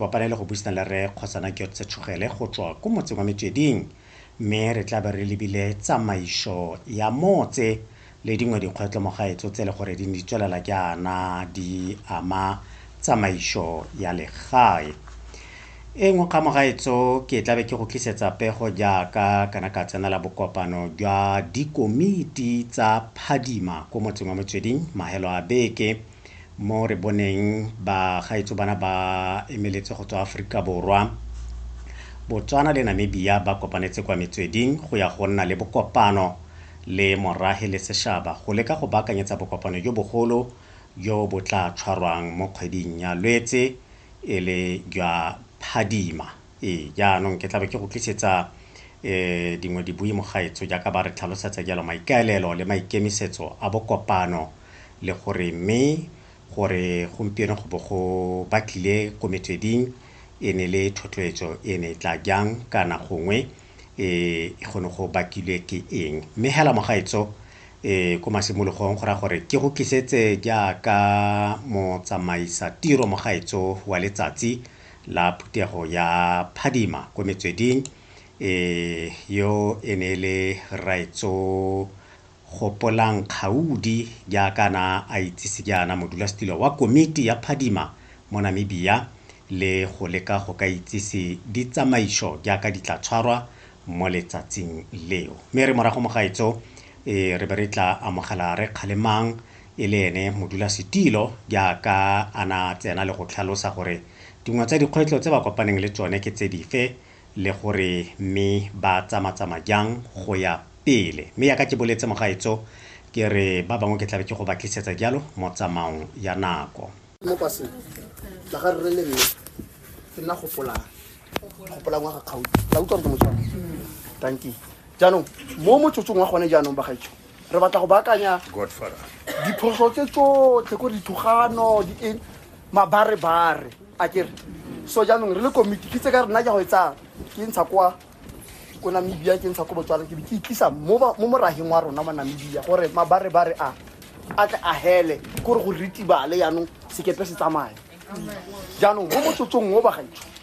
Kopana le go buisana le Rre Kgosana Gyotse Tshogele go tswa ko motseng wa Metsweding mme re tla be re lebile tsamaiso ya motse le dingwe dikgwetlho mo gaetso tse e le gore di ne di tswelela jaana di ama tsamaiso ya legae. E nngwe kgang mo gaetso ke tla be ke go tlisetsa pego jaaka kana ka tsenela bokopano jwa dikomiti tsa phadima ko motseng wa Metsweding mahelo a beke. mo re boneng ba gaetso bana ba emeletse go tswa Aforika Borwa. Botswana le Namibia ba kopanetse kwa metsweding go ya go nna le bokopano le morahe le seshaba go leka go baakanyetsa bokopano jo bogolo jo bo tla tshwarwang mo kgweding ya Lwetse e le jwa phadima. Ee, jaanong ke tlabe ke go tlisetsa eh dingwe dibui mogaetso jaaka ba re tlhalosetsa jalo maikaelelo le maikemisetso a bokopano le gore mme gore gompieno go bo go batlile ko metsweding e ne le thotloetso e ne e tla jang kana gongwe e go ne go bakilwe ke eng mme hela mogaetso e ko masimologong go raya gore ke go kisetse jaaka motsamaisa tiro mogaetso wa letsatsi la phuthego ya phadima ko metsweding e yo e ne le raetso Gopolang Kgaudi jaaka a na a itsise jaana, modulasetilo wa komiti ya phadima mo Namibia le go leka go ka itsise ditsamaiso jaaka di tla tshwarwa mo letsatsing leo. Mme re morago mo gaetso e re be re tla amogela Rre Kgalemang e le ene modulasetilo jaaka a na a tsena le go tlhalosa gore dingwe tsa dikgwetlo tse ba kopaneng le tsone ke tse dife le gore mme ba tsamatsama jang go ya pele. Mme yaka ke boletse mogaetso ke re ba bangwe ke tlabe ke go ba tlisetsa jalo mo tsamaong ya nako. Mo paseng la ga rre le mme ke nna gopolang gopolang wa ga kgautsi la utlwa gore ke motshwana tanki jaanong mo motsotsong wa gone jaanong bagaetsho re batla go baakanya diphoso tse tsotlhe ko dithogano di eng mabarebare a kere so jaanong re le komiti ke tse ka rena ja go e tsaya ke ntsha kwa ko namibia ke ntsha ko botswana ke be ke itlisa mo morageng wa rona mo namibia gore mabarebare a a tle a hele kore go ritibale jaanong sekepe se tsamaya jaanong mo motsotsong mo bagaetsho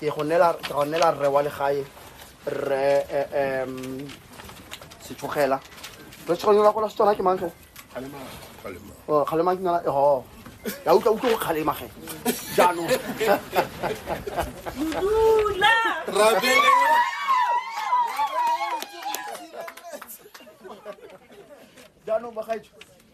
ke go nela rre wa legae rre um setsogela re tshwanela gola setswana ke mangge kgalema ke nala ho ya utlwa utlwe go kgalema ge jaanong jaanong bagaetsho